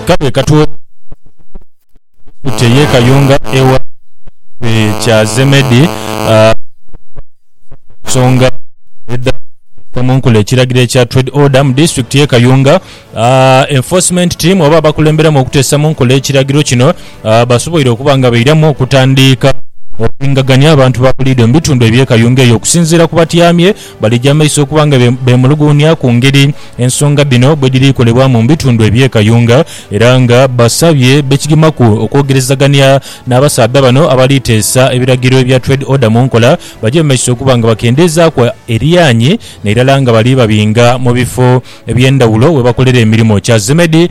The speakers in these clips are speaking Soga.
Kale ka twolekerezeegho Yesu kye yeekayunga egha ekitebe kya Zemedi ku nsonga edha kuteeka mu nkola ekiragiro ekya Trade Order mu disitulikiti y'e Kayunga. Enforcement Team oba abakulemberemu okuteesa mu nkola ekiragiro kino basoboire okuba nga bairamu okutandiika okulingagania abantu ba buliidho mu bitundu eby'e Kayunga eyo okusinziira ku batyamye Balija amaiso okuba nga beemuluguunia ku ngeri ensonga dhino bwedhiri kolebwamu mu bitundu eby'e Kayunga era nga basabye bekigimaku okwogerezagania n'abasaadha bano abali teesa ebiragiro ebya Trade Order mu nkola baje mu maiso okuba nga bakendeezaaku eryanyi nairala nga bali babinga mu bifo eby'endhawulo we bakolera emirimo. Kya Zemedi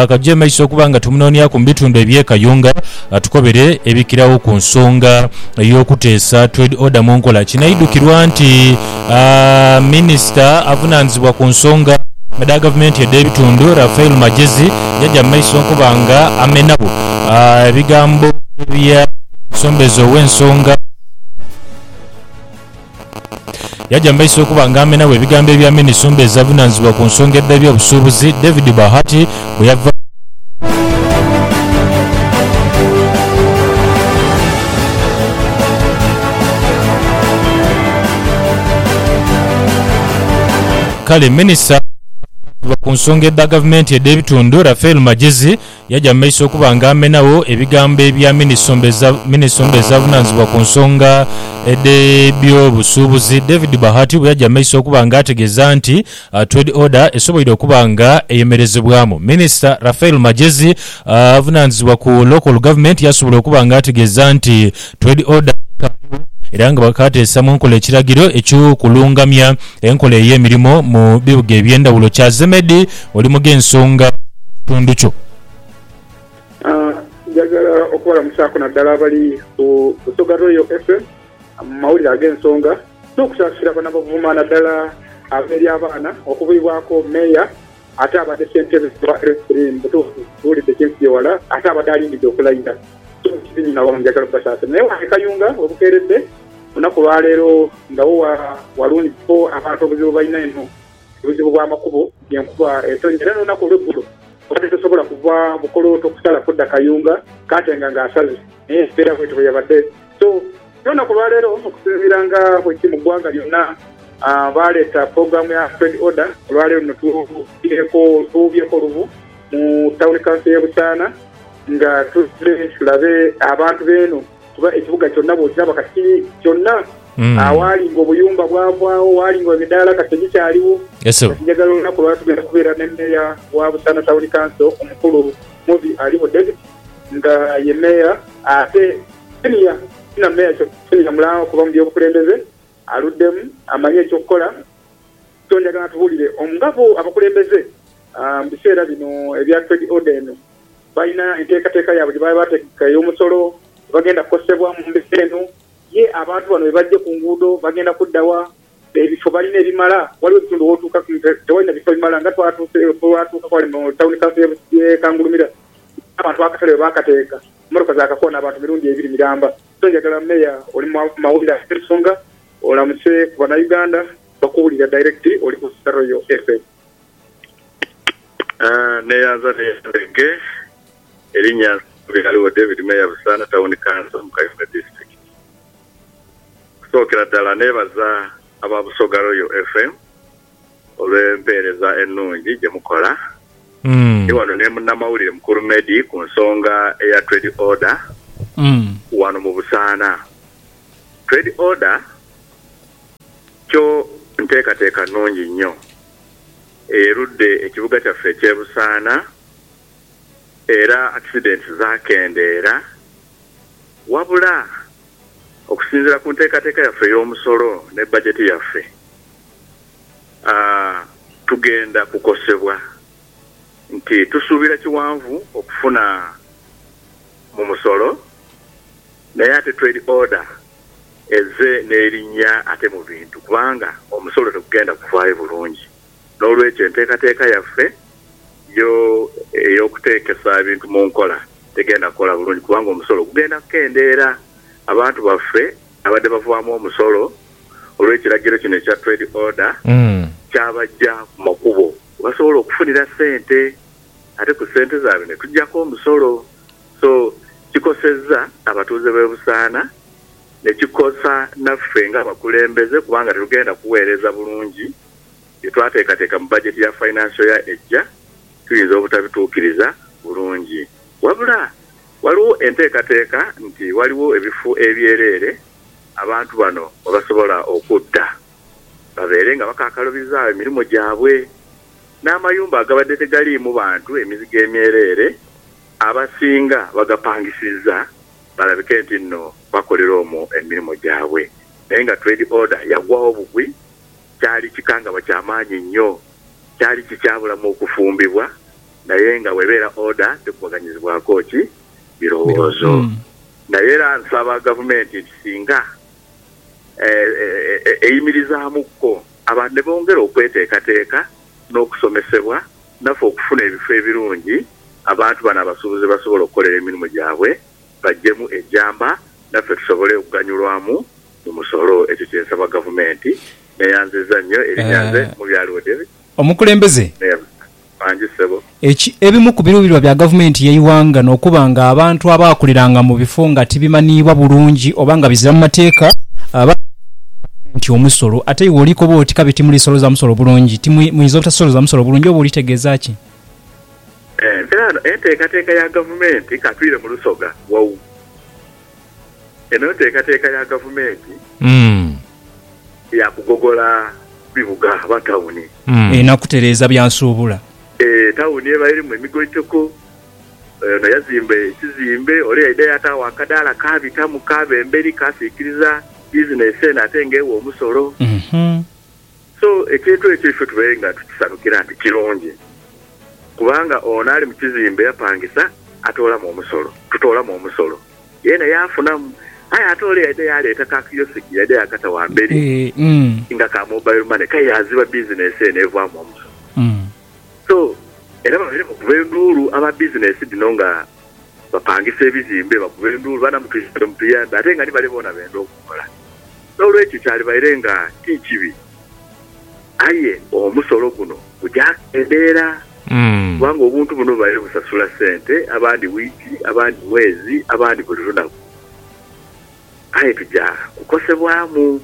katugye mu maiso okuba nga tumunoonyaku mu bitundu eby'e Kayunga atukobere ebikiragho ku nsonga ey'okuteesa Trade Order mu nkola. Kinaidhukirwa nti minisita avunaanizibwa ku nsonga dha gavumenti edh'ebitundu, Raphael Magyezi yaja mu maiso okuba nga amenagho ebigambo bya omusombeze ow'ensonga, Yaja mu maiso okuba nga amenagho ebigambo ebya minisumba ez'avunaanizibwa ku nsonga edh'ebyobusuubuzi, David Bahati bwe yava. Kale minisita avunaanizibwa ku nsonga edha gavumenti edh'ebitundu, Raphael Magyezi Yaja mu maiso okuba nga amenagho ebigambo ebya minisomba ezavunanizibwa ku nsonga edh'ebyobusuubuzi, David Bahati bwe yaja mu maiso okuba nga ategeeza nti Trade Order esoboire okuba nga eyemerezebwamu. Minisita Raphael Magyezi avunanizibwa ku Local Government yasobola okuba nga ategeeza nti Trade Order ekaaliwo era nga bakaateesa mu nkola ekiragiro eky'okulungamya enkola ey'emirimo mu bibuga eby'endhawulo kyazemedi oli mu gh'ensonga mu kitundu kyo. Njagala okubalamusaaku naddala abali ku Busoga Royal FM mu mawulire ag'ensonga n'okusaasira bano abavuma naddala ab'eri abaana okubwibwaku Meeya Ate abadde ssentebe wa Referee mu butuufu tuwulidde kye nkubye wala ate abadde alindidde okulayira so nkibi nyo nawamu njagala okubasaasira naye wange Kayunga obukeeredde ku lunaku lwa leero nga wo walungi kuko abantu obuzibu bwe balina eno buzibu bwa makubo nti enkuba etonnya era n'olunaku olw'eggulo obadde tosobola kuva Bukolooto kusala kudda Kayunga kaatenga nga asaze naye embeera bwetyo bwe yabadde. So, byona ku lwa leero, okusinziira nga bwe kiri mu ggwanga lyonna, baaleeta pulogulaamu ya Trade Order. Olwa leero luno tughuubireeko, tughuubyeeko olughu mu Tawuni Kanso y'e Busaana nga tuzze tulabe abantu b'eno kuba ekibuga kyonna bw'okiraba kati kyonna awaali ng'obuyumba bwavaagho, waali ng'emidaala kati tegikyaliwo. Kati njagala olunaku lwa tugenda kubeera ne Meeya wa Busaana Tawuni Kanso omukulu Mubi Aliwoded, nga ye meeya ate senior senior meeya kyoka senior mulaa okuva mu by'obukulembeze aluddemu amanye eky'okukola so njagala atubuulire omu nga bo abakulembeze mu biseera bino ebya trade order eno balina enteekateeka yaabwe gye baba baategeka ey'omusolo gye bagenda kukosebwa mu mbeera eno ye abantu bano bwe bajje ku nguudo bagenda kudda wa? Ebifo balina ebimala. Waliwo ebitundu w'otuukaku nga tewalina bifo bimala nga twatuukaku ghale mu Tawuni Kanso y'e Kangulumira abantu akatale we baakateeka mmotoka zaakakoona abantu mirundi ebiri miramba. So njagala Meeya oli mu mawulire ago ensonga olamuse ku Banauganda bakuwulira direct oli ku Royal FM. Neyanza neyanzege, erinnya nze Nsubulighaligho David Meeya Busaana Tawuni Kanso mu Kayunga Disitulikiti. Okusookera ddala neebaza aba Busoga Royal FM olw'empeereza ennungi gye mukola. Ndi wano ne munnamawulire mukulu Meddie ku nsonga eya Trade Order wano mu Busaana. Trade Order kyo nteekateeka nnungi nnyo eyerudde ekibuga kyaffe eky'e Busaana era accidents zaakendeera. Wabula, okusinziira ku nteekateeka yaffe ey'omusolo ne bajeti yaffe, tugenda kukosebwa nti tusuubira kiwanvu okufuna mu musolo naye ate Trade Order ezze n'erinnya ate mu bintu kubanga omusolo tegugenda kuvaayo bulungi. N'olwekyo, enteekateeka yaffe yo ey'okuteekesa ebintu mu nkola tegenda kukola bulungi kubanga omusolo gugenda kukendeera. Abantu baffe ababadde bavaamu omusolo olw'ekiragiro kino ekya Trade Order kyabaggya ku makubo we basobola okufunira ssente ate ku ssente zaabwe ne tuggyako omusolo. So kikosezza abatuuze b'e Busaana ne kikosa naffe ng'abakulembeze kubanga tetugenda kuweereza bulungi. bye twateekateeka mu bajeti ya Financial Year ejja tuyinza obutabituukiriza bulungi. Wabula, ghaligho enteekateeka nti ghaligho ebifo ebyereere abantu bano mwe basobola okudda babeere nga bakaakalubizaawo emirimo gyabwe n'amayumba agabadde tegaliimu bantu emizigo emyereere abasinga bagapangisizza balabike nti nno bakolera omwo emirimo gyabwe naye nga Trade Order yagwagho bugwi kyali kikangabwa kya maanyi inho. Kyali kikyabulamu okufumbibwa, naye nga bw'ebeera oda tekubaganyizibwaku ki birowoozo. Naye era nsaba Gavumenti nti singa eyimirizaamuko abantu ne bongera okweteekateeka n'okusomesebwa, naffe okufuna ebifo ebirungi abantu bano abasuubuzi ghe basobola okukolera emirimu gyabwe baggyemu ejjamba naffe tusobole okuganyulwamu mu musolo. Ekyo kye nsaba Gavumenti. Neeyanzizza nnyo erinnya. Nze Mubyaliwo David. Omukulembeze. Neeyanzizza mangi ssebo. Eki, Ebimu ku biruubirirwa bya Gavumenti y'eighanga n'okuba nga abantu abaakuliranga mu bifo nga tibimaniibwa bulungi oba nga bizira mu mateeka, baaghalanga Gavumenti omusolo. Ate iwe olikoba oti kabi timulisoloza musolo bulungi. Ti, muyinza obutasolooza musolo bulungi oba olitegeeza ki? Enviraano, Enteekateeka ya gavumenti katwire mu Lusoga wau. Eno nteekateeka ya gavumenti ya kugogola bibuga oba tawuni. Erina kutereeza bya nsuubula. E, tawuni eba erimu emigoitoko. Ono yazimba ekizimbe, ole yaidha yaataagho akadaala kaabitamu kaaba emberi kaasiikiriza bizinesi eno ate nga egha omusolo. So, ekintu ekyo ife tubaire nga tukisanukira nti kirungi, kubanga ono ali mu kizimbe yapangisa atoolamu omusolo, tutoolamu omusolo, yeena yaafunamu. Aye ate ole yaidha yaaleeta ka kiyosiki yaidha yaakata ghamberi nga ka mobile money, kale yaaziba bizinesi eno evaamu omusolo. So, era babaire bakuba enduulu aba bizinesi dhino nga bapangisa ebizimbe, bakuba enduulu, baana mutuyambe, mutuyambe ate nga ni bale boona benda okukola. N'olwekyo kyalibaire nga ti kibi. Aye omusolo guno guja kendeera kubanga obuntu buno bubaire busasula sente abandi wiiki, abandi mwezi, abandi buli lunaku. Aye tuja kukosebwamu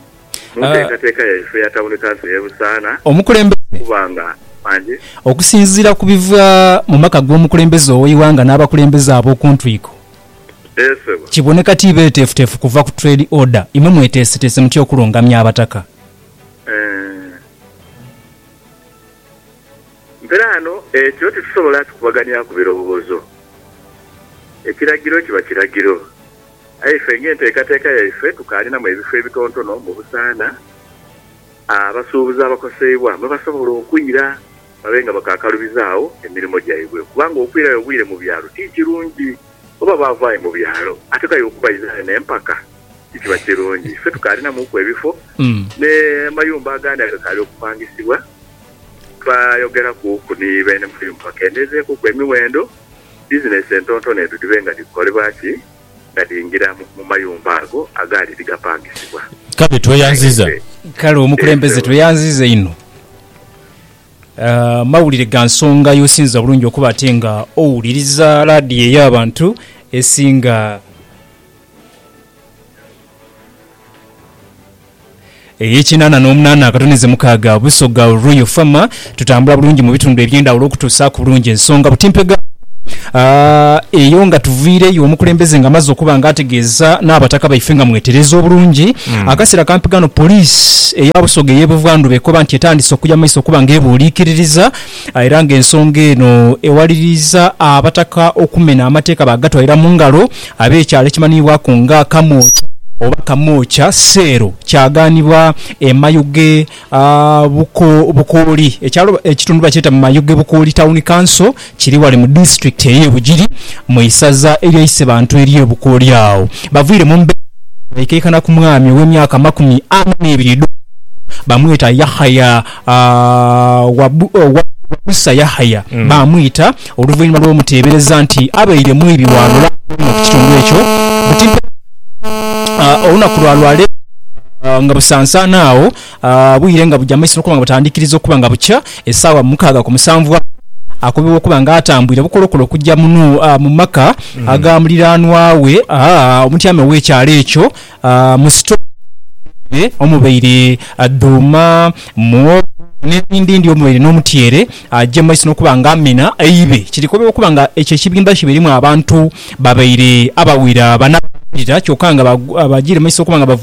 mu nteekateeka yaife eya Tawuni Kanso y'e Busaana Omukulembeze. kubanga bangi. Okusinziira ku biva mu maka g'omukulembeze ow'eighanga n'abakulembeze ab'oku ntwiko, Eeh ssebo. kiboneka ti beeteefuteefu kuva ku Trade Order. Imwe mweteeseteese mutya okulungamya Abataka? Eeh. Mperaano ekyo titusobola kikubaganiaku birowoozo. Ekiragiro kiba kiragiro. Aye ife ng'enteekateeka yaife tukaalinamu ebifo ebitontono mu busaana abasuubuzi abakoseibwa mwe basobola okwira babe nga bakaakalubiza agho emirimo gyaibwe kubanga okwirayo obwire mu byalo ti kirungi. Oba baava aye mu byalo ate k'aye okubaidha ghano empaka ti kiba kirungi. Ife tukaalinamuku ebifo n'amayumba agandi agakaali okupangisibwa. Twayogerakuku ni beene mayumba bakendeezeekuku emiwendo. bizinesi entonotono edho dhibe nga dhikukolebwa ki? Nga dhiingira mu mayumba ago agaali dhi gapangisibwa. Kale tweyanziza. Kale omukulembeze tweyanziza inho. Amawulire ga nsonga y'osinza bulungi okuba ate nga owuliriza laadiyo ey'abantu esinga. Ey'ekinaana n'omunaana akatonize mukaaga Busoga Royal Farm tutambula bulungi mu bitundu eby'endhawulo okutuusaaku bulungi ensonga butimpegano eyo nga tuviireyo omukulembeze nga amaze okuba nga ategeeza n'abataka baife nga mwetereeze obulungi akaseera ka mpigano Poliisi eya Busoga ey'e Buvandhuba ekoba nti etandise okuya mu maiso okuba nga ebuuliikiririza era nga ensonga eno ewaliriiza abataka okumena amateeka baagatwalira mu ngalo Ab'ekyalo ekimanhiibwaku nga Kamwokya oba Kamwokya Seero kyagaanibwa e Mayuge Bukooli. Ekyalo ekitundu bakyeta Mayuge Bukooli Town Council, kiri ghale mu disitulikiti ey'e Bugiri mu isaza erya Isebantu ery'e Bukooli. Agho bavaire mu mbeera nga baikaikana ku mwami ow'emyaka amakumi ana n'ebiri edh'obukulu, bamweta Yakhaya Wabusa Yakhaya, baamwita Oluvainhuma lw'omuteebereza nti abaire mwibi wa lulamba inho ku kitundu ekyo, buti mpewo ki olunaku lwa lwa leero nga busansaana agho bwire nga buja mu maiso n'okuba nga butandikiriza okuba nga bukya esaawa mukaaga ku musanvu agho akobebwa okuba nga atambwire bukolokolo okuja mu maka aga muliraanwa we omutyame ow'ekyalo ekyo Mu sitoowa mweidhwire omubaire dhuuma, muwogo n'ebindindi omubaire n'omutyeere. Aja mu maiso n'okuba nga amina eibe. Kirikobebwa okuba nga ekyo ekibimba kibairimu abantu babaire abawera bana abaaghirira kyoka nga bajiire mu maiso okuba nga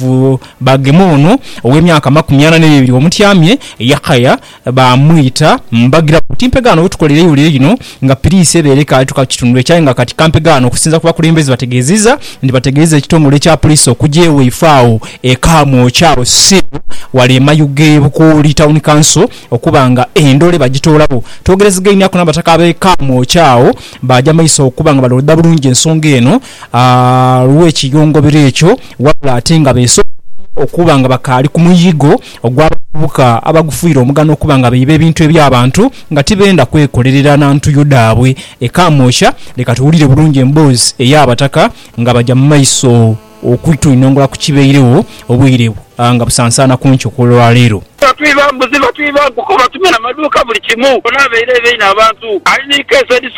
bagema ono ow'emyaka amakumi ana n'ebiri omutyamye, Yakhaya, Baamwita mbagira bati, Mpegha ghano we tukolera eighulire lino nga piriisi ebeere ekaali tuka ku kitundu ekyo aye nga kati ka mpeghe ghano okusinza ku bakulembeze bategeezizza nti bategeeza ekitongole kya Poliisi okugya ewaifo agho e Kamwokya agho Cell wale e mayuge e Bukooli Town Council okuba nga endole bagitoolawo. Twogerezegainiaku n'abataka ab'e Kamwokya agho baaja maiso okuba nga balooda bulungi ensonga eno lw'ekiyongobero ekyo wabula ate nga beesoghodoire okuba nga bakaali ku muyigo ogw'abavubuka abagufuire omugano okuba nga baiba ebintu eby'abantu nga tibenda kwekolerera na ntuyo dhaabwe e Kamwokya, leka tuwulire bulungi emboozi ey'Abataka nga baja mu maiso okutuinongora ku kibairegho obwire nga busansaana ku nkyo kw'olwaleero. Batwiba mbuzi, batwiba nkoko, batumena amaduuka buli kimu. Ono abaire aidha inho abantu. Ali ni KZC.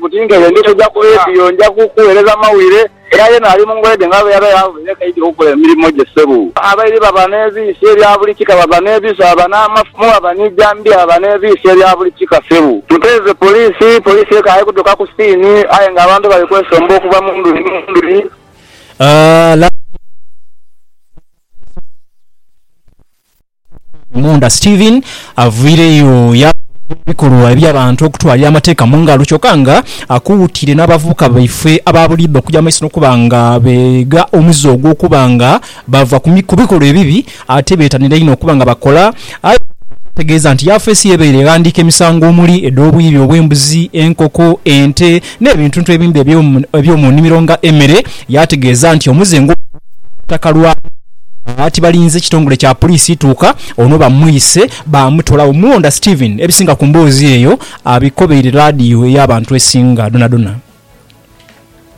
Buti ng'eyo ndi toja kubeediyo, nja kukuweereza mawire. Era yena ali mu ngoye dhe nga bweyaba yaavaire kaidhi okukola emirimo gye. Sebu. Abairi baba n'ebiisi ebya buli kika, baba n'ebiso, baba n'amafumu, baba ni jambiya, baba n'ebiisi ebya buli kika. Sebu. Muteeze poliisi. Poliisi ekaaye kutuuka ku siini aye nga abantu bali kwesomba okuva mu nduli ni nduli. Laavu. Munda Stephen avaireyo yaagha ebikolwa eby'abantu okutwalira amateeka mu ngalo kyoka nga akuutire n'abavubuka baife aba buliidho okuja mu maiso n'okuba nga beegha omuze ogw'okuba nga bava ku bikolwa ebibi ate beetanire inho okuba nga bakola aye ategeeza nti yafeesi ye ebaire eghandiika emisango omuli edh'obwibi obw'embuzi, enkoko, ente n'ebintuntu ebindi eby'omu nnimiro nga emere, yaategeeza nti omuzingu guno gwa ttaka lwabwe nga ati balinze kitongole kya puliisi ituuka ono bamwise baamutoolawo. Mulonda Stephen ebisinga ku mboozi eyo abikobeire laadiyo ey'abantu esinga dhonadhona.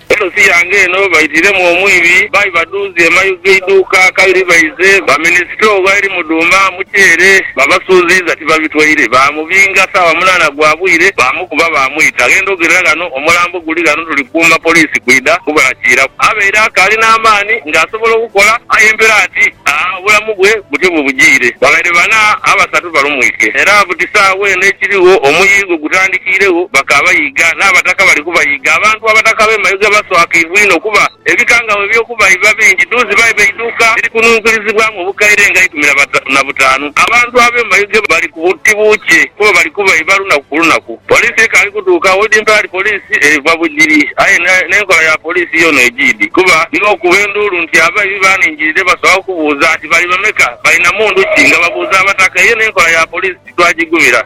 Poliisi yange eno baitiiremu omwibi, baiba dhuuzi e mayu g'eiduuka kabiri baize bamene sitoo ghaeri mudhuma, muceere, babasuuziiza tibabitwaire, baamubinga saawa munaana gwa bwire, baamu. kuba baamwita. Ghenda ogerera ghano, omulambo guli ghano tuli kuuma poliisi kwidha gubalakiiraku. Abaire akaali n'amaani nga asobola okukola aye mpera ati aa obulamu bwe butyo bwe bujiire. Babaire bana, abasatu balumwike era buti saagha eno ekirigho omuyiigo gutandikiiregho bakaaba yiiga n'abataka bali kubayiiga. Abantu abataka b'e Mayuge baswakibwa inho kuba. Ebikangabwa eby'okuba biba bingi duu ziba iba eiduuka erikununkirizibwamu obukaire nga eikumi na basatu na butaanu. Abantu ab'omu mayuge bali ku buti buukye kuba bali kuba iba lunaku ku lunaku. Poliisi ekaali kuduuka Holding Parade Police eva Bugiri aye n'enkola ya poliisi yoona ejiidhi kuba nibo okuba enduulu nti abaibi baaningirire basobola okubuuza nti bali bameka, balina mundu ki nga babuuza Abataka eyo n'enkola ya poliisi titwagigumira.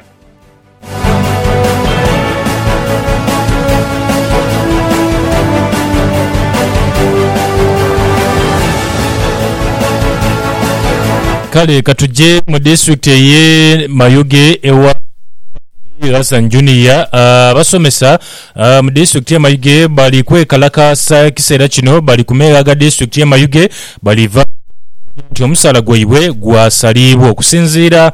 Kale ka tuje mu disitulikiti ey'e Mayuge ewa Hassan Junior abasomesa Mu disitulikiti ye Mayuge bali kwekalakaasa ekiseera kino bali ku meegha ga disitulikiti ye Mayuge bali vaako okutegeza nti omusaala gwaibwe gwasaliibwa okusinziira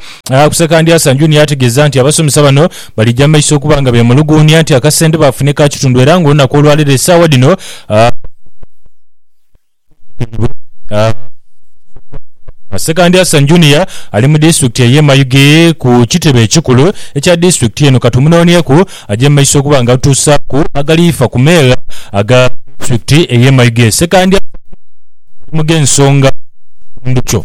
ku Sekandi Asan Junior ategeza nti abasomesa bano balija maiso okuba nga bemuluguunia nti akasente bafune ka kitundu era nga olunaku olwaleero esaawa dhino Sekandi Hassan Junior ali mu disitulikiti ey'e Mayuge ku kitebe ekikulu ekya disitulikiti eno. Ka tumunoonyeku aje mu maiso okuba nga atuusaaku agaliifa ku meere aga disitulikiti ey'e Mayuge. Sekandi Hassan Junior ali mu gh'ensonga mu kitundu kyo.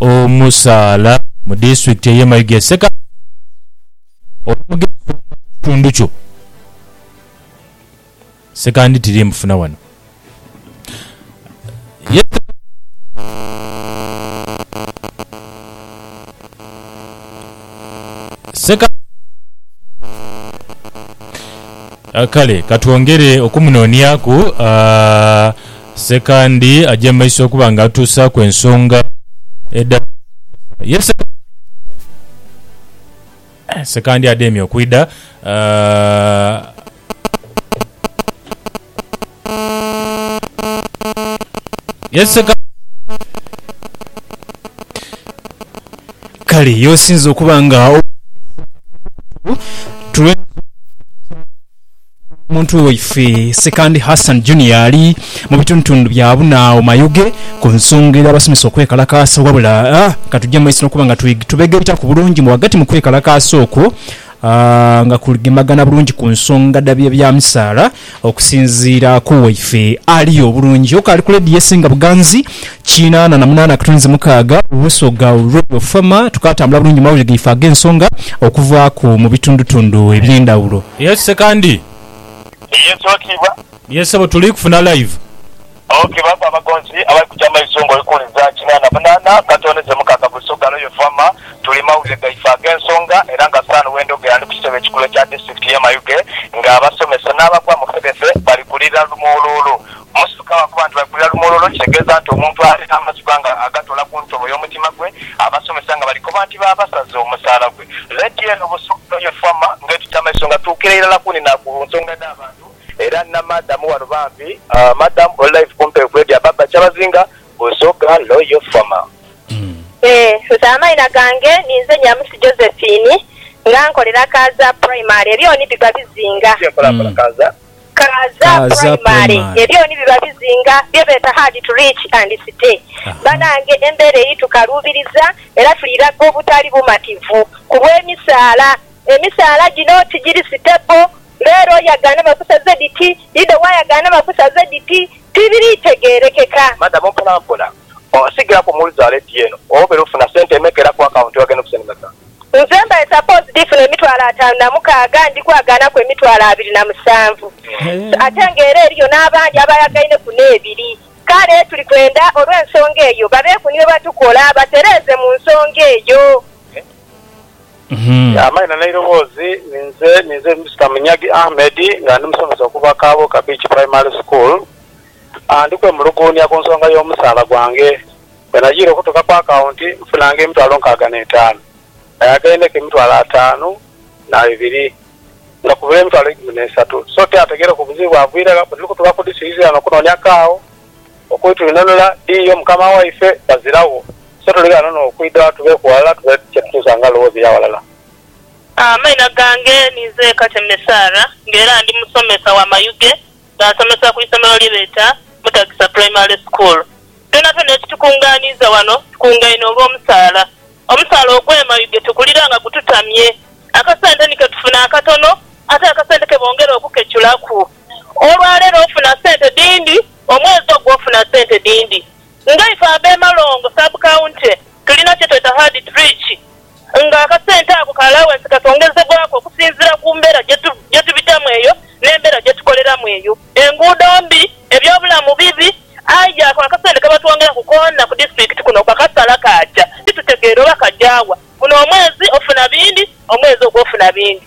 omusaala mu disitulikiti eye Mayuge Sseka olwomugenzi omuto mukitundu kyo Ssekandi tiri mufuna wano Seka. Kale ka twongere okumunooniaku. Sekandi aja mu maiso okuba nga atuusaaku ensonga edha ye Seka. Sekandi ademye okwidha. Yeseka. Kale y'osinze okuba nga tuwe omuntu waife Sekandi Hassan Junior ali mu bitundutundu bya Buna awo Mayuge ku nsonga ey'abasomesa okwekalakaasa wabula katugye mu maiso n'okuba nga tubegaitaku bulungi mu ghagati mu kwekalakaasa okwo A Nga kuligemagana bulungi ku nsonga dha bye bya misaala, okusinziira ku waife ali obulungi oku ali ku leediyo esinga buganzi kinaana na munaana akatunzi mukaaga, Busoga Royal Farmer, tukaatambula bulungi mu mawulire gaife ag'ensonga okuvaaku mu bitundutundu eby'endhawulo. Yes Sekandi. Yes Owekitiibwa. Yes Ssebo tuli kufuna live. Awo ke baagho abagonzi abali kuja amaiso ng'oli kuwuliza kina na munaana gatoonheze mukaaga buli so galoyo FAMA. Tuli mawulire gaife ag'ensonga era nga San wendhogera ndi ku kitebe ekikulu ekya disitirikiti y'e Mayuge nga abasomesa n'abagwa mu fedhefe bali kulira lumuuluulu. Musuka bwakuba nti bali kulira lumuuluulu kitegeeza nti omuntu ali n'amazigwa nga agatoola ku ntobo y'omutima gwe. Abasomesa nga bali koba nti baabasaza omusaala gwe. Leediyo eno Busoga galoyo FAMA ng'etugya amaiso nga tuukira irala ku ni na ku nsonga edh'abantu. Era nina madam wano bambi. Aah madam oli live kumpi okwedi ababa kyabazinga busoga loyal farmer. Eeh nse amaina gange ninze Nyamusi Josephine nga nkolera Kaaza primary ebyoni biba bizinga. Ki enkola nkola Kaaza. Kaaza primary ebyoni biba bizinga byebeta hard to reach and stay banange embera eri tukaluubiriza era tuli laga obutali bumativu kulwe misaala. Emisaala gino tigiri sitepo, mbeera oyagaane bakusaze dhiti, idho wayagaana bakusaze dhiti, tibiri tegeerekeka. Madamu mpolampola osigala ku mu luzaalo eddiya eno obeera ofuna sente emeka era ku akawunti wagenda okusa ni meka? Nze mba e suppose dhifuna emitwalo ataanu na mukaaga ndi kwagaanaku emitwalo abiri na musanvu ate nga era eriyo n'abandi abayagaineku n'ebiri. Kale tuli kwenda olw'ensonga eyo babeeku ni bye batukola batereeze mu nsonga eyo. Amaina n'eiroboozi, ninze ninze Mister Munyagi Ahmed nga ndi musomesa okuva Kabuuka Beach Primary School. Ndi kwemuluguunia ku nsonga y'omusaala gwange. Bwe najiire okutuuka ku akawunti nfunanga emitwalo nkaaga n'etaanu. Nayagendeku emitwalo ataanu na ebiri nga kubula emitwalo eikumi n'esatu. So tiyategeereku buzibu bwavuyire gha bwe tuli kutuuka ku disirizoni okunoonia kaagho Okwitwinonula dhiyo Mukama waife baziragho, so tulighano n'okwidha tubeeku ghalala tubone kye tutuusa nga lowooza ey'aghalala. Amaina gange ninze Kateme Sarah nga era ndi musomesa wa mayuge nga nsomesa ku isomero lye beta Mutagisa Primary School. Byonabyona ekitukunganiiza wano tukungaine olw'omusaala. Omusaala ogwe mayuge tugulira nga gututamye. Akasente ni ketufuna akatono ate akasente kebongera okukeculaku. Olwaleero ofuna sente dhindi, omwezi ogwo ofuna sente dhindi. Ngaife ab'eMalongo Sub County tulina kyetweta Hard Trick nga akasente ako ka allowance kasongezebwaku okusinziira ku mbeera gyetubitamu eyo n'embeera gyetukoleramu eyo. Enguudo mbi, ebyobulamu bibi aye ako akasente kabatwongeraku koona ku disitulikiti kuno bakasala kaaja titutegeera oba kaja wa. Guno omwezi ofuna bindi, omwezi ogwo ofuna bindi.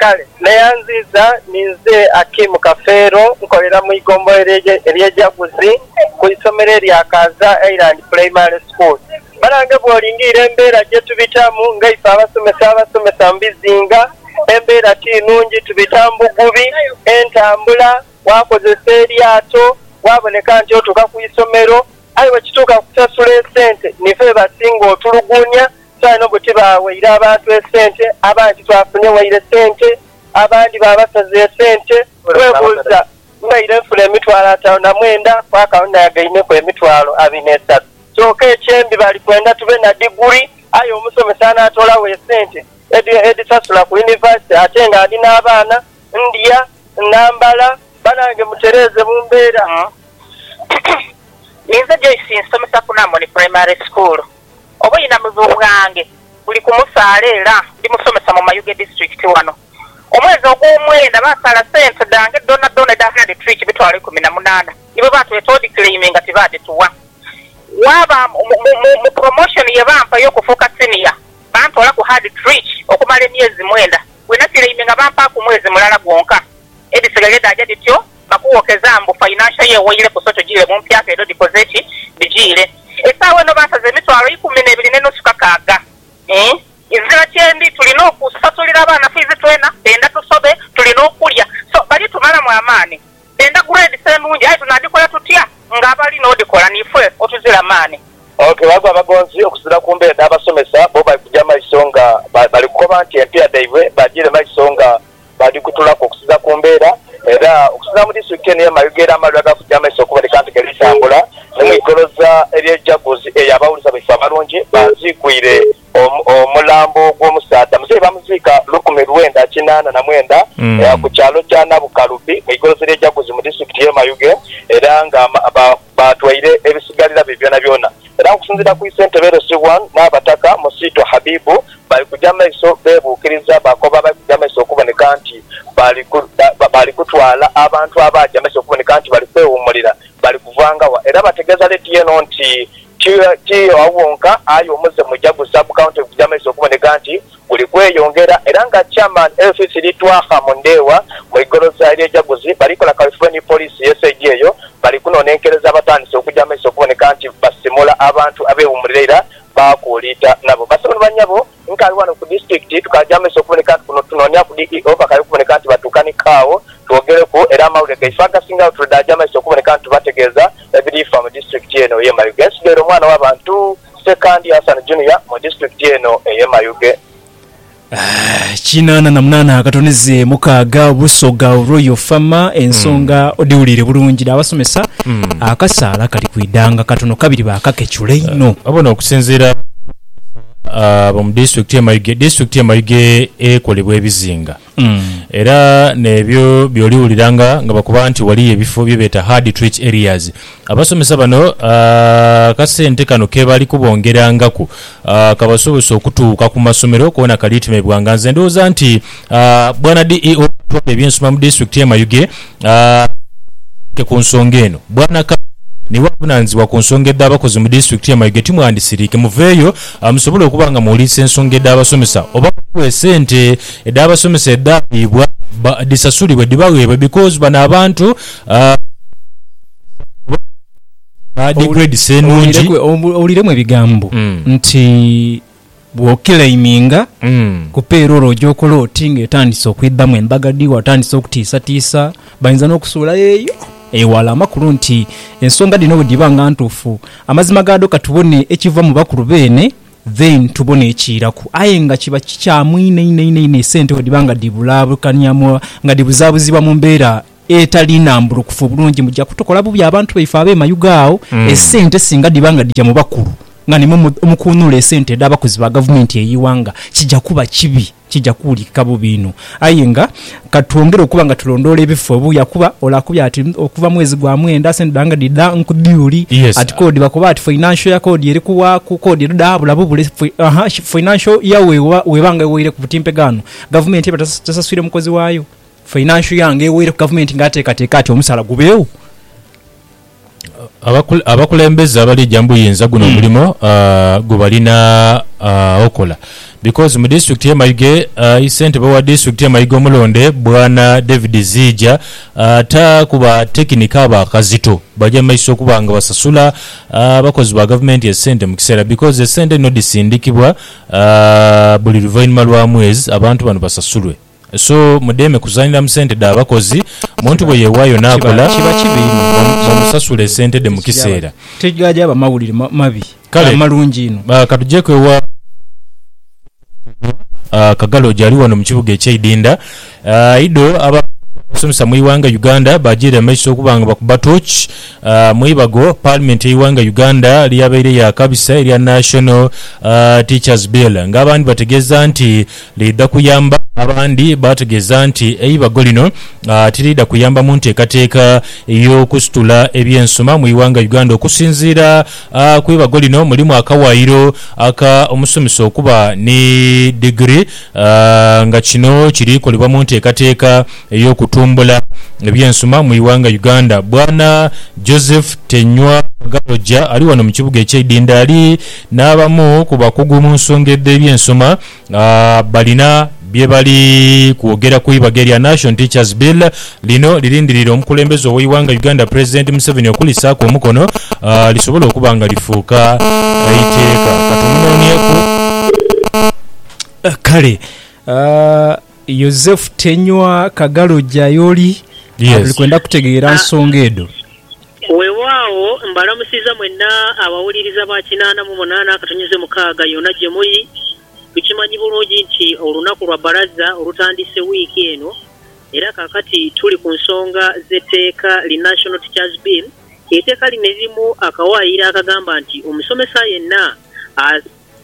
Kale neyanziiza ni nze Akim Kafeero, nkolera mu ighombolola ery'e Jaguzi ku isomero erya Kaaza Island Primary School. Banange bw'olingiira embeera gye tubitamu ng'eife abasomesa abasomesa mu bizinga, embeera ti nungi. Tubita mu bugubi, entambula, waakozesa eryato, waaboneka nti otuuka ku isomero. Aye bwe kituuka ku kusasula esente, nife be basinga otuluguunia. Saino obo tibaaweire abantu esente, abandi titwafunye waire sente, abandi baabasaza esente. Weebuuza, Mbaire nfuna emitwalo ataanu na mwenda, kwaka ono nayagaineku emitwalo abiri n'esatu. Kyoka ekyembi bali kwenda tube na diguli, aye omusomesa anaatoolagho esente edhisasula ku yunivasite ate ng'ali n'abaana. ndya, nambala, banange mutereeze mu mbeera. Inze Joyce nsomesa ku Namoni Primary School. Obwinamivu bwange buli ku musaala era ndi musomesa mu Mayuge District wano. Omwezi ogw'omwenda basaala sente dhange dhonadhona edha Hard Trick emitwalo ikumi na munaana ni bwe batweta odiclaiminga tibaadhituwa. Waaba mu promotion ye bampa ey'okufuuka Senior, bantoolaku Hard Trick okumala emyezi mwenda. Bwe nateleime nga bampaaku mwezi mulala gwonka, edhisigaire dhaaja dhityo nga kuwokeza mbu financial year weireku so tujiire mu mpyaka edho dhikoze ki? Dhijiire. Esaawa eno bansaze emitwalo ikumi n'ebiri ne nusu kakaaga. Eeh. Nzira kyendi tulina okusasulira abaana fiizi twena, benda tusobe, tulina okulya so bali tumalamu amaani. Endagula edhisa enungi, aye tunadhikola tutya nga abali n'odhikola niife otuzira maani? Ok, ghaku abagonzi okuzira ku mbeera dha basomesa, bo bali kuja maiso nga bali kukoba nti empia dhaibwe badhire maiso nga badhikutulaku okusiza ku mbeera era okusinzira mu disitulikiti eno ye Mayuge era amalwire gali kuja maiso okuboneka nti galitambula ni mu igoloza elye Jaguzi eyo abawuliza baife abalungi banziigwire Omulambo gw'omusaadha muzeyi baamuziika lukumi lwenda kinaana na mwenda ku kyalo kya Nabukalubi mu igorofa ly'e Jaguzi mu disiturikiti y'e Mayuge era nga baatwaire ebisigalira bye byonabyona era ng'okusinziira ku Isentebe Erosi I, Nnaabataka Musiitwa Habibu, bali kugya mu maiso beebuukiriza bakoba abali kugya mu maiso okuboneka nti bali kutwala abantu abaagya mu maiso okuboneka nti bali kwewummulira bali kuvaanga wa era bategeeza leediyo eno nti Ti agho ghonka, aye omuze muja gu Sub County guja mumaiso okuboneka nti guli kweyongera era nga Chairman Elfis Litwakha Mundhewa mu igolosa ery'ejaguzi bali kola kaweefube ni Poliisi ye saidi eyo bali kunonenkereza abatandise okuja mumaiso okuboneka nti basimula abantu abewumulira era baakuuliita nabo. Basebo ni banyabo. Nkaali ghano ku disitulikiti tukaaja mu maiso okuboneka nti kuno tunoonia ku DEO bakaali okuboneka nti batuuka ni kaagho twogeleku era amawulire gaife agasingagho tulidaaja maiso okuboneka nti tubategeeza ebiri fa mu disitulikiti eno eye Mayuge ensigaire omwana wa bantu Ssekandi Hassan Junior mu disitulikiti eno eye Mayuge. Kinaana na munaana akatonize mukaaga Busoga Royal Farm ensonga odhiwuliire bulungi dha basomesa akasaala kali kwidhanga katono kabiri baakakechula inho. Wabona okusinziira. Abasaadha bomu disitulikiti ye Mayuge. Disitulikiti ye Mayuge ekolebwa ebizinga era nebyo byoli wuliranga nga bakoba nti waliyo ebifo byebeta hard treat areas. Abasomesa bano akasente kano kebali kubongerangaku kabasobose okutuuka kumasomero kona kalitemebwanga. Nze ndowooza nti Bwana DEO atwala ebyensoma mu disitulikiti ye Mayuge awereire ente ku nsonga eno. Bwana Kale niwe avunanizibwa ku nsonga edha bakozi mu disitulikiti ye Mayuge timwandisirike muveeyo musobole okuba nga muwulirisa ensonga edha basomesa oba ghaligho esente edha basomesa edhaabibwa dhisasulibwe dhibagheebwe because bano abantu baaghaza oba badhi grades enungi. Owuliremu ebigambo nti. Bw'okilaiminga ku payroll oja okola oti nga etandise okwidhamu embaga dhi watandise okutiisatiisa. Bainza n'okusuula eyo eghala amakulu nti ensonga dhino bwe dhiba nga ntuufu, amazima gaadho ka tubone ekiva mu bakulu beene then tubone ekiiraku. Aye nga kiba kikyamu inho inho inho esente bwe dhiba nga dhibulaabukania, nga dhibuzaabuzibwa mu mbeera etali nambulukufu obulungi muja kutukola bubi abantu baife abe mayuge agho esente singa dhiba nga dhija mu bakulu nga nimwo mukunhula esente edha bakozi ba gavumenti eye ighanga kija kuba kibi kija kuwulikika bubi inho aye nga katwongere okuba nga tulondoola ebifo ebuya kuba ole akubye ati okuva mwezi gwa mwenda sente dha nga dhidha nku diuli ati kodi bakoba ati financial year kodi eri kuwaku kodi edho dhaabula bubule financial year weba nga eweire ku butimpe ghano gavumenti eba tesaswire mukozi wayo. Financial Young eweire ku gavumenti nga atekateka ati omusaala gubeegho. Abakulembeze abaleja mbu yinza guno omulimo gwebalina okola because mu disitulikiti ye Mayuge ayi ssentebe wa disitulikiti ye Mayuge omulonde bwana David Ziija ta ku ba tekinika abo akazito baje mu maiso okuba nga basasula abakozi ba gavumenti esente mu kiseera because esente dhino dhisindikibwa buli luvainhuma lwa mwezi abantu bano basasulwe. So mudheeme kuzanhira mu sente dha bakozi. Muntu bwe yeewaayo n'akola, mumusasule sente dhe mu kiseera. Tigaaba mawulire mabi, ghaba malungi inho. Kale ka tujeeko ewa Omulangira Kagaloja ali wano mu kibuga eky'e Idinda. Ido abakulira abasomesa mu ighanga Uganda baajiire amaiso okuba nga bakuba toochi mu ibago Paalimenti y'eighanga Uganda ly'abaire yaakabisa erya National Teachers Bill ng'abandi bategeeza nti Liidha kuyamba abandi baategeeza nti eibago lino tiriidha kuyamba mu nteekateeka y'okusitula eby'ensoma mu ighanga Uganda okusinziira ku ibago lino mulimu akawaayiro aka omusomesa okuba ni digiri nga kino kiri kolebwa mu nteekateeka ey'okutumbula eby'ensoma mu ighanga Uganda. Bwana Joseph Tenywa Galoja ali wano mu kibuga eky'eidhindha ali n'abamu ku bakugu mu nsonga edh'eby'ensoma. nga balina bye bali kwogera ku ibaga erya Nation Teachers Bill lino lirindiriire omukulembeze ow'eighanga Uganda Pulezidenti Museveni okulisaaku omukono lisobole okuba nga lifuuka eiteeka. Kale Yozefu Tenywa Kagalo Jayoli ali kwenda kutegeera nsonga edho. Weewaawo, mbalamusiza mwena abawuliriza ba kinaana mu munaana akatonyezo mukaaga yona gye muli. Tukimanyi bulungi nti olunaku lwa Bbalaza olutandise wiiki eno, era kaakati tuli ku nsonga z'etteeka li National Teachers Bill. Eteeka lino lirimu akawaayiro akagamba nti omusomesa yenna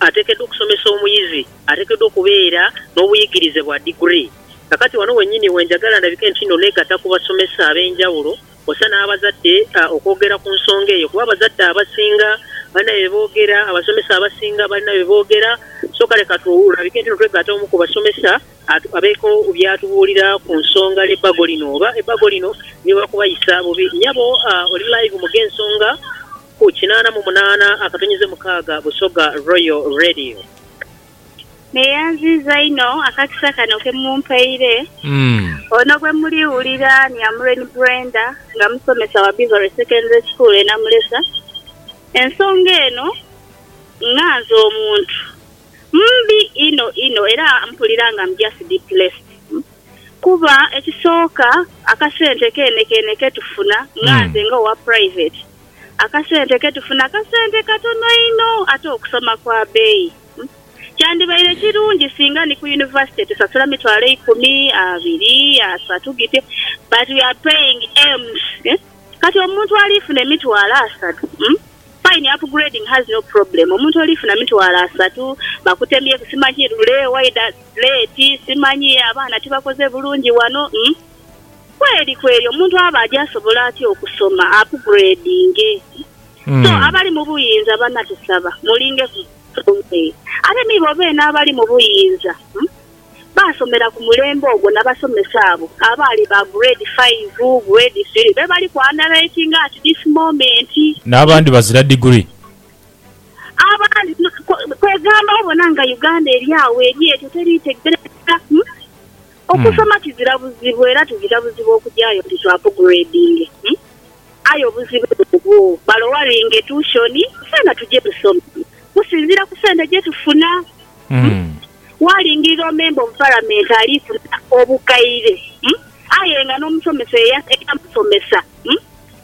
ateekeddwa okusomesa omuyizi ateekeddwa okubeera n'obuyigirize bwa diguli. Kaakati wano wennyini wenjagala ndabike nti nno negatta ku basomesa ab'enjawulo. Osa n'abazadde okwogera ku nsonga eyo kuba abazadde abasinga balina bye boogera, abasomesa abasinga balina bye boogera. So kale ka tulabike nti nitwegatta omu ku basomesa abeeko by'atubuulira ku nsonga y'ebbago lino oba ebbago lino liba kubayisa bubi. Nyabo oli live mu Gh'ensonga ku kinaana mu munaana akatonyize mukaaga Busoga Royal Radio. Neyanziiza inho akakisa kano ke mumpaire. Ono bwe muliwulira ni Amureni Brenda nga musomesa wa Beverly Secondary School e Namulesa. Ensonga eno nga nze omuntu mbi inho inho era mpulira nga am just depressed kuba ekisooka akasente keenekeene ke tufuna nga nze nga owa private Akasente ke tufuna kasente katono inho ate okusoma kwa beeyi. Kyandibaire kirungi singa ni ku yunivasite tusasula mitwalo eikumi, abiri, asatu gityo but we are paying M's eeh. Kati omuntu alifuna emitwalo asatu umm fine upgrading has no problem omuntu olifuna mitwalo asatu bakutemyeku simanyi lule waidha late simanyi abaana tibakoze bulungi wano umm. Kweri kweri omuntu aba adi asobola atya okusoma apugredinge? So abali mu buyinza bana tusaba mulinge ku nsonga eyo. Ate ni bo beene abali mu buyinza baasomera ku mulembe ogwo na basomesa abo abaali ba Grade Faive, Grade Three be bali ku underwriting at this moment. N'abandi bazira diguri. Abandi kwe, kwegamba obona nga Uganda eri agho eri etyo teriitegerekeka. Okusoma tizira buzibu era tizira buzibu okugyayo nti to upgradinge aye obuzibu bubwo balowaringe tuushoni fena tuje tusome kusinzira ku sente gyetufuna. Walingirira omemba of palamenti ali funa obukaire aye nga n'omusomesa eyamusomesa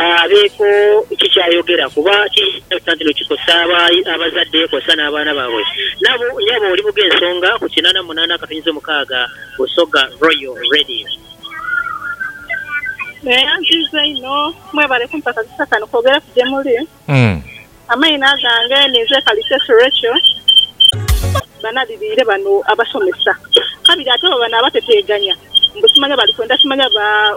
abeeko ki ky'ayogera kuba kiyinza nti kikosa abazadde kwosa n'abaana baabwe. Nabo, nyabo oli bughe ensonga ku kinana munana akatonyezo mukaaga Busoga Royal Radio. Era nziiza inho. Mwebale kumpa kakisa kano kwogereku gye muli. Amaino agange ninze Kalitesi Rachael. Banadhiliire bano abasomesa kabiri ate baba n'abateteeganya mbu simanya bali kwenda kimanya ba.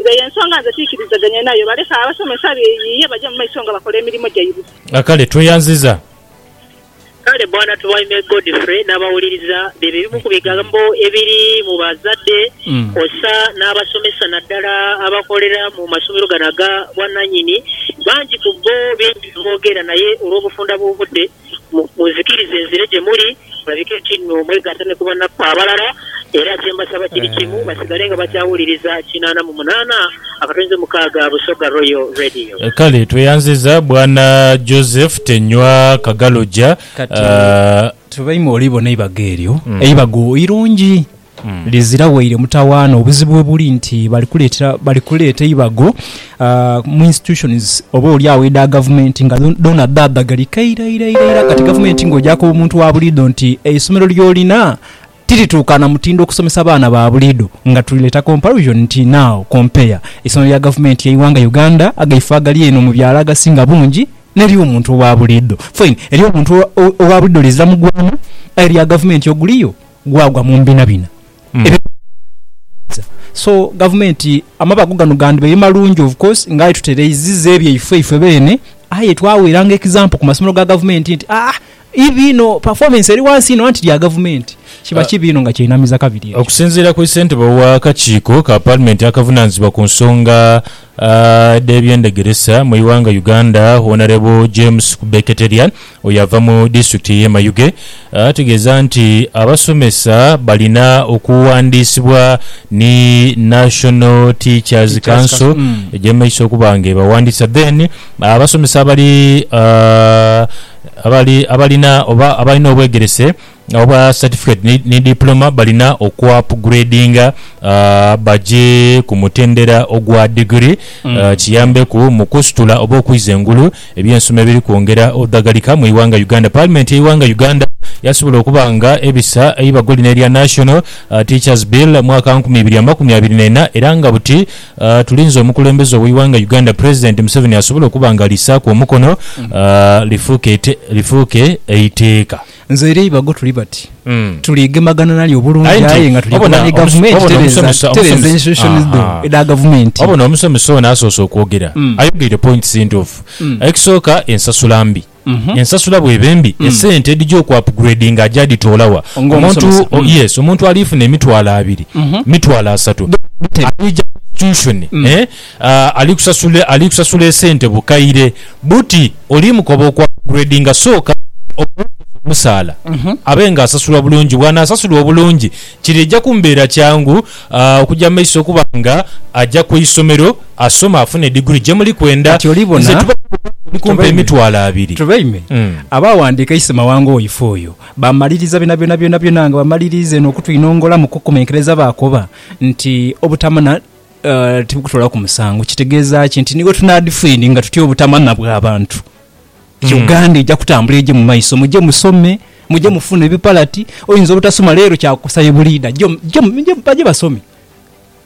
Nga y'ensonga nze tiikirizaganya nayo. Baleke abasomesa beeyiiye baje mu maiso nga bakola emirimo gyaibwe. A Kale tweyanziza. Kale Bwana Tumaime Godfrey n'abawuliriza bye bimu ku bigambo ebiri mu bazadde kwosa n'abasomesa naddala abakolera mu masomero gano aga bwananyini. Bangi ku bbo bingi bye boogera naye olw'obufunda bw'obudde, Munzikirize nzire gye muli, mulabike ekinno mwegatta ni ku banaku abalala. Era kye mbasaba kiri kimu, basigale nga bakyawuliriza kinaana mu munaana akatonzi mukaaga Busoga Royal Radio. Kale tweyanziza bwana Joseph Tenywa Kagaloja. Kati tubaime olibona eibago eryo eibago irungi. Lizira waire mutawaana. Obuzibu webuli nti bali kuleetera, bali kuleeta eibago mu institutions oba oli agho edha gavumenti nga dhoona dhaadhagalika ira ira ira ira kati gavumenti ng'oja koba omuntu wa buliidho nti eisomero ly'olina tirituuka na mutindo okusomesa baana ba buliidho nga tuli leta comparison nti now compare eisomero lya gavumenti ey'eighanga Uganda agaife agali eno mu byalo agasinga bungi n'ery'omuntu owa buliidho. Fine, ery'omuntu owa buliidho lizira mugwaana aye erya gavumenti oguliyo. gwagwa mu mbinabina ebyo byebatebereza so gavumenti amabago gano gandhibaire malungi of course nga aye tutereiziza ebyaife ife beene aye twaweeranga example ku masomero ga gavumenti nti aah ivi inho performance eri wansi inho anti lya gavumenti kiba kibi inho nga kyainamiza kabiri ekyo. Okusinziira ku ssentebe w'akakiiko ka Palimenti akavunaanyizibwa ku nsonga dh'ebyendegeresa mu ighanga Uganda Honorable James Kubeketeria, Oyo ava mu disitulikiti y'e Mayuge ategeeza nti abasomesa balina okuwandiisibwa ni National Teachers Council egye mu maiso okuba nga ebawandiisa then abasomesa abali abali abalina oba abalina obwegerese Obwa Certificate ni ni Diploma balina okuapguredinga baje ku mutendera ogwa digiri kiyambeku mu kusitula oba okwiza engulu ebyensoma ebiri kwongera odhagalika mu ighanga Uganda. Parliament ye ighanga Uganda yasobola okuba nga ebisa eibago lino erya National Teachers Bill mwaka nkumi ibiri amakumi abiri nena era nga buti tulinze omukulembeze owe ighanga Uganda President Museveni asobole okuba nga alisaku omukono lifuuke lifuuke eiteeka. Nze eri eibago tuli bati, tuli gemagana nalyo obulungi aye nga tuli kulwanya gavumenti tereza tereza institutions dho edha gavumenti. Wabona omusomesa ono asoose okwogera ayogeire points ntuufu. Ekisooka ensasula mbi, ensasula bweba embi esente edhija oku upgradinga aja dhitoola wa? Omuntu yes omuntu alifuna emitwalo abiri, mitwalo asatu, alija ku institution eh! Ali kusasula ali kusasula esente bukaire buti oli mukoba okwa upgradinga sooka omwongeze omusaala abe nga asasula bulungi bwanasasulwa obulungi kiri eja kumubeera kyangu okuja mu maiso okuba nga aja ku isomero asome afune diguli jemuli kwenda Kati oli bona? nze tuba oli kumpa Tubaime. emitwalo abiri Tubaime. Mm. Abaawandiika Isi Mawanga Oife Oyo, baamaliriza byonabyona byonabyona nga bamaliriiza eno okutwinongola mu kukomekereza baakoba nti obutamana Tibukutoolaku musango. Kitegeeza ki? Nti ni bwe tunaadhifiiringa tutya obutamanya bwa bantu, Uganda eja kutambula eje mu maiso. Muje musome, muje mufune ebipalati. Oyinza obutasoma leero kyakukosa ye buliidha. Jo, jo, jo baje basome.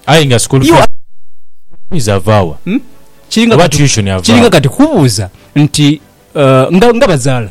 Aye nga school fees, fees ava wa? Kiringa Oba kati, tuition ava kiringa wa? kati kubuuza nti, nga, nga bazaala.